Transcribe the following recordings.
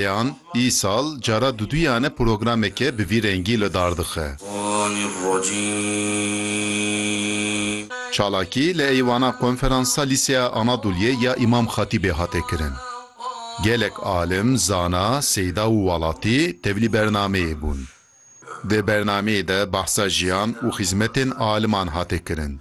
Yan îsal cara duduyan e programeke bi vî rengî li dar dixe. Çalakî li Eywana Konferansa Lîseya Anadoliyê ya Îmam Xatîbê hate kirin. Gelek alim, zana, seyda û welatî tevlî bernameyê bûn. Di bernameyê de behsa jiyan û xîzmetên aliman hate kirin.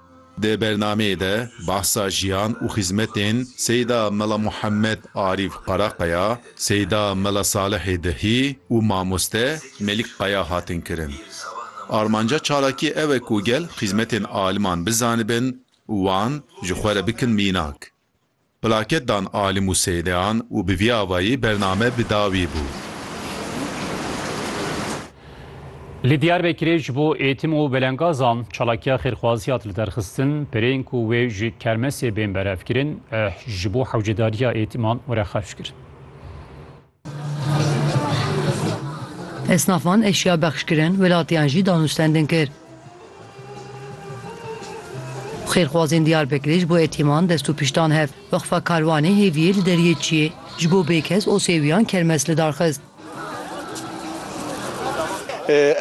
Di bernameyê de behsa jiyan û xizmetên Seyda Mela Muhammed Arîf Qaraqaya, Seyda Mela Salihê Dihî û mamoste Melik Qaya hatin kirin. Armanca çalakiyê ew e ku gel xizmetên aliman bizanibin û wan ji xwe re bikin mînak. Plaket dan alim û seydeyan û bi vî avayî bername bi dawî bû. Li Diyarbekirê ji bo Êtim û Belengazan çalakiya xêrxwazî hat li derxistin. Pirên ku wê ji kermesê bên berevkirin, ji bo hewcedariya Êtiman were xerc kirin. Esnafan eşya bexş kirin, welatiyan jî danûstendin kir. Xêrxwazên Diyarbekirê ji bo etîman dest û pişt dan hev. Weqfa Karwanê Hêviyê li Deriyê Çiyê ji bo bêkes û sêwiyan kermes li dar xist.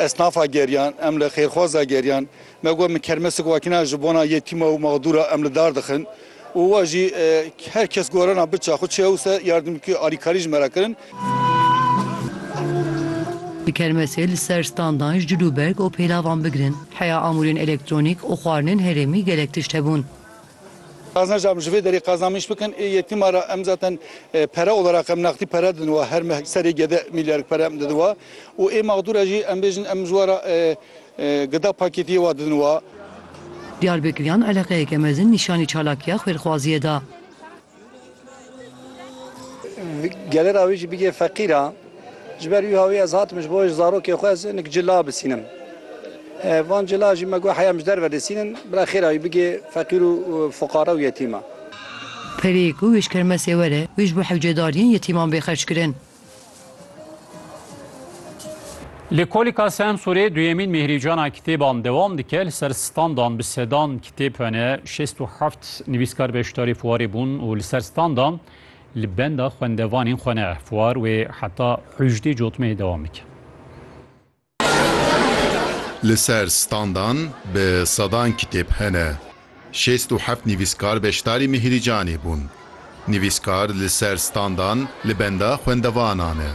Esnafa geriyan, em li xêrxwaza geriyan Me got min kermesik wakina ji bona yetîma û maxdûra em li dar dixin û wa jî her kes gorana biça xwe çi hewse yardimkî alîkarî ji me re kirin. Di kermesê li ser standan ji cil û berg û pêlavan bigirin, heya amûrên elektronîk û xwarinên herêmî gelek tişt hebûn. Qazanc jî em ji vê derê qazan min îş bikin ê yetîma re em zaten pere olarak em nextî pere didin wan her meh serê gede mîlyarek pere em didin wan û ê maxdûra jî em bêjin em ji we re Gida pakêtiyê wa didin wa. Diyarbekiryan eleqeyeke mezin nîşanî çalakiya xwêrxwaziyê da. Gelê ra wî jî bigê feqîr a. Ji ber wî hawî ez hatim ji bo ji zarokê xwe ez hinek cila bisînim. Van cila jî me got heya em ji derve disînin bira xêra wî bigê feqîr û fuqara û yetîman. Pereyê ku wê ji kermesê were, wê ji bo hewcedariyên yetîman bê xerckirin. Lêkolîka Semsûrê duyemîn mêhrîcana kitêban dewam dike. Li ser standan bi sedan kitêb hene. Şêst û heft nivîskar beşdarî fuwarê bûn û li ser standan li benda xwendevanên xwe ne. Fuwar wê heta hûjdê cotmehê dewam dike. Li ser standan bi sedan kitêb hene. Şêst û heft nivîskar beşdarî Mihirîcanê bûn. Nivîskar li ser standan li benda xwendevanan ne.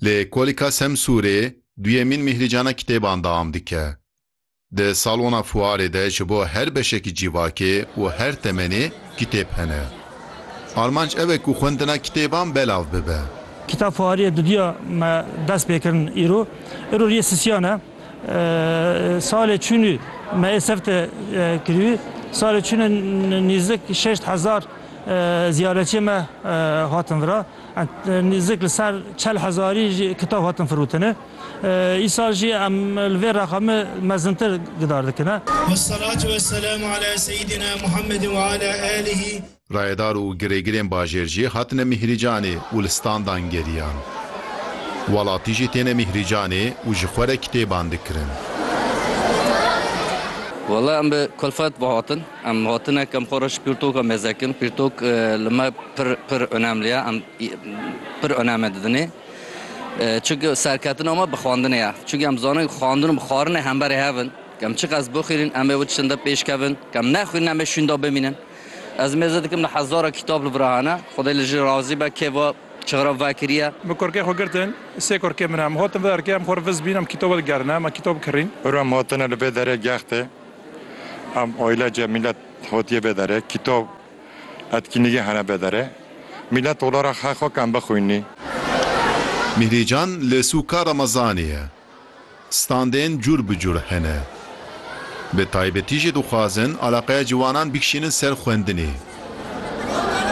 Li Kolîka Semsûrê duyemîn Mihirîcana kitêban deam dike. Di salona fuarê de ji bo her beşekî cîvakê û her temenê kitêb hene. Armanc ew e ku xwendina kitêban belav bibe. Kitap fuariyê duduya me dest pê kirin îro. Îro riyê sisiyan e. Salê çûnû me ê serte kirîbû. Salê çûnû nîzdik şeşt hezar ziyaretçiyê me hatin vira. Nîzdik li ser çel hezarî jî kitap hatin firotine. Îsal jî em li vê rexa me mezintir gidar dikine. Wesselatü wesselamu ala seyyidina Muhammedin ve ala alihi. Rayedar û girêgirên bajêr jî hatine mîhrîcanê û li standan geriyan. Welatî jî têne mîhrîcanê û ji xwe re kitêban dikirin. Wela em bi kulfet ve hatin. Em hatine kem xwe re ji pirtoka mêzekin. Pirtok li me pir pir onemli ye. Em pir oneme didinê. Çunke serketina me bi xwendinê ye. Çunke em dizanin ku xwendin û bi xwarinê hemberî hev in. Ku em çiqas bixwînin em ê wê tiştin de pêş kevin. Ku em nexwînin em ê şûnda bimînin. Ez mêze dikim li hezara kitap li vir a hene. Xwedê li jin razî be kê va çixira vekiriye. Min kurkê xwe girtin. Sê kurkê min e. Em hatin vê erkê em xwe riviz bîn em kitaba digerine. Em kitab kirîn. Pir em hatine li vê derê gextê. Em aîlece mîlet hatiye vê derê. Kitab Etkinlîgê hene bedere. Mîlet ola ra xeh xo kem bixwînî. Mîhrîcan li sûka Remezanê ye. Standên cûr bi cûr hene. Bi taybetî jî dixwazin alaqeya ciwanan bikişînin ser xwendinê.